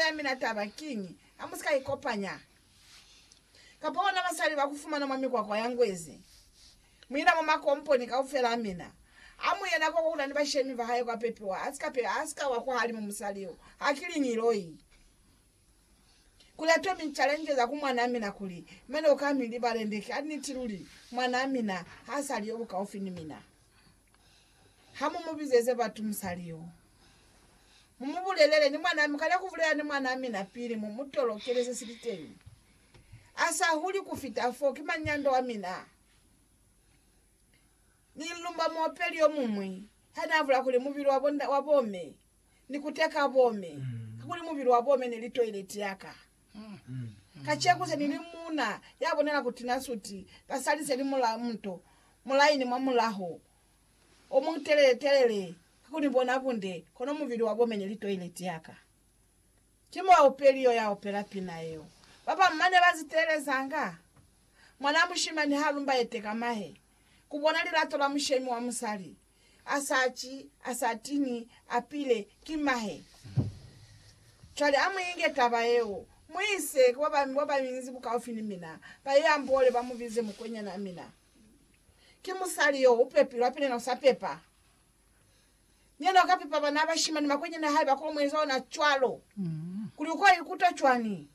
ya mina taba kiñi, hamusika ikopanya kapa bona basali bakufumana mwa mikwakwa ya ngwezi. Muina mwa makomponi kaufela a mina, amuye nako kukula ni bashemi bahae kwa pepiwa, asika pe, asika wa kwahalimu musali yo, hakiliñi loi. Kuli atomi challenge za ku mwanaa mina kuli, Mane uka mi libale nde ki? A niti luli, mwanaa mina hasali yo bukaufi ni mina. Ha mu mu bizeze batu musali yo, mu mu bulelele ni mwanaa mi kale ku bulela ni mwanaa mina pili mu mu tolokele se sili teñi. A sa huli ku fita fo, ki mañi ya nda wa mina? Ni lumba muopeli yo muñwi ha naa bula kuli mubili wa bo, wa bo me ni kuteka bo me, kakuli mubili wa bo me ne li toileti ya ka. Kaceko se ni li muuna ya bonela ku tina suti, basali se li mula muto, mulaini mwa mulaho o mu telele telele ka ku ni bona bunde, kono mubili wa bomene li toilet ya ka. Ki muaupeli yo ya opela pina yeo. Ba bañwi ba ne ba si teelezanga. Mwanaa mushimani ha lumba ete ka mahe, ku bona lilato la mushemi wa musali. A sa ci, a sa tiñi, a pile, ki mahe. Cwale a mu inge taba yeo, mu ise ku ba bañinzi bukaufi ni mina, ba ye amboole, ba mu bize mukwenyana mina. Ki musali yo, u pepilwe, hape ni wena u sa pepa. Ni yena u ka pepa bana ba bashimani, makwenyani a hae ba ko mu eza ona cwalo. Kuli u ko ikuta cwani?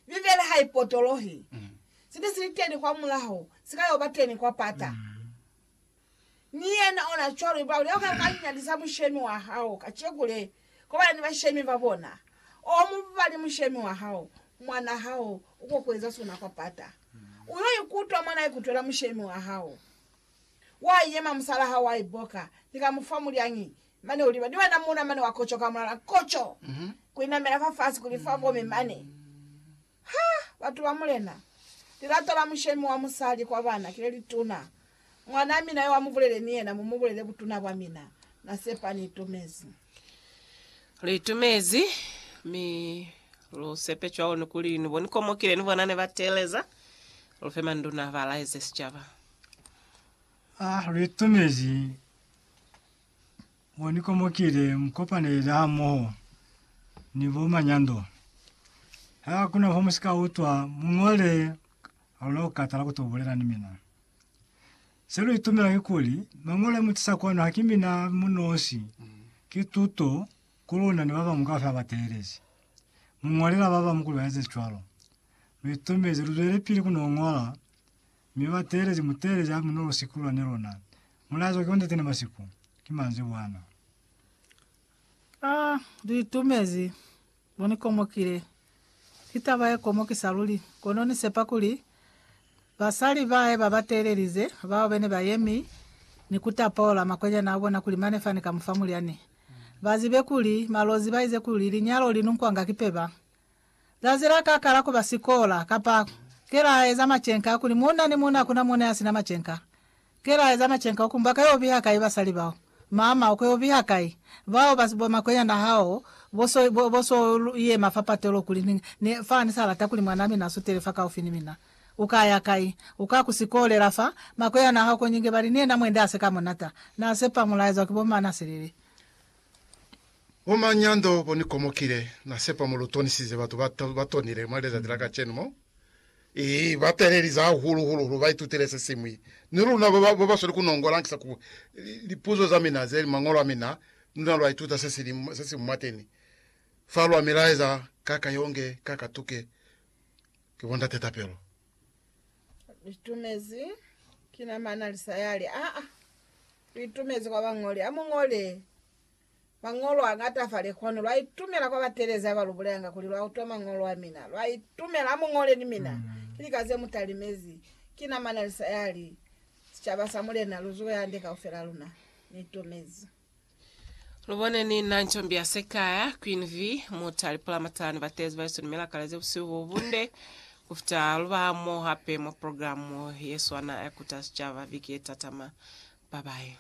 Bibele ha i potolohi. Se ne si li teni kwamulaho, si ka yo ba teni kwa pata. Ni yena ona cwalo iba ulya ka ukanyalisa mushemi wa hao kaceku le, kobana ni bashemi ba bona. O mubali mushemi wa hao, mwanaa hao uko kueza sona kwa pata. Uyo ikutwa mwa na ikutwela mushemi wa hao. Wa yema musalaa hao wa iboka, ni ka mufa mulyangi, mane uliba ni banamuna mane wa kocoka mulala koco, kuinamela fafasi kuli fa kome mane. Ha! Batu ba Mulena! Lilato la mushemi wa musali kwa bana ki le lituna. Mwanaa mina yo amubulele ni yena, mumubulele butuna bwa mina. Na sepa ni itumezi. Lu itumezi, mi lu sepe cwalo ni kuli ni bo ni komokile ni bona ne ba teeleza. Lu fe manduna ba laeze sicaba. Ha lu itumezi. Mo ni komokile mu kopanelile hamoho ni bo manyando. Ha ku na fo mu si ka utwa, mu ñole ha lu na ku katala ku to bulela ni mina. Se lu itumela kikuli, Mañolo a mu tisa kwanu ha ki mina mu nosi, ki tuto ku luna ni ba bañwi kaufela ba teelezi. Mu ñolela ba bañwi kuli ba eze cwalo. Lu itumezi, lu zwelepili ku no ñola, mi bateelezi, muteelezi a mu no lu sikulula ni luna, Mulazo ki onzatene ba siku, ki manzibwana. A li itumezi, Bo ni komokile. Ki taba ye komokisa luli, kono ni sepa kuli basali bae ba ba teelelize, bao bene ba yemi ni ku tapola makwenyana a bona kuli mane fani ka mu fa mulyani, ba zibe kuli malozi ba ize kuli linyalo li nunkwanga ki peba. Zazi la ka kala kuba sikola, kapa, Ke la eza macenka, kuli muuna ni muuna hakuna mune ya sina macenka. Ke la eza macenka ukumba ka yo biha kai basali bao. Mama, uko yo biha kai? Bao ba bo makwenyana hao, bo so, bo, bo so yema fa patelo kuli, Ni, ni, fa ni sa lata kuli mwan'a mina a sutele fa kaufi ni mina. U ka ya kai? U ka ku sikolela fa. Makwenyana hao ko nyinge bali, Ni yena mwende a se ka munata. Na sepa mulaezwa ki bo Manaselele. Bo manyando bo ni komokile, Na sepa mo lu tonisize batu ba, ba tonile mwa lezati la kacenu mo. I ba talelize hahulu hulu lu ba itutile se siñwi. Ni luna ba ba, ba ba sweli ku nongola ankisa ku lipuzo za mina ze li Mañolo a mina, luna lwa ituta se si li, se si mwateni fa. Lwa mi laeza, Ka ka yonge, ka ka tuke, ki bo ndate tapelo. Litumezi kina mana lisayali a a litumezi kwa bañoli. Amuñole mañolo añata fa lekwanu. Lwaitumela kwa batelezi abalubulelanga kuli lwautwa mañolo amina. Lwaitumela amuñole ni mina. Ki lika zemutalimezi. Kina mana lisayali. Sicaba sa Mulena luzuwe hande kaufela luna. Niitumezi. Lubone ni na ncombi ya sekaya, Queen V, muta lipulamatani batezi ba Yesu ni milakale ze busihu bo bunde kufita luba mo hape mwa programu ye swana ya Kuta Sicaba viki ye tatama. Bye bye.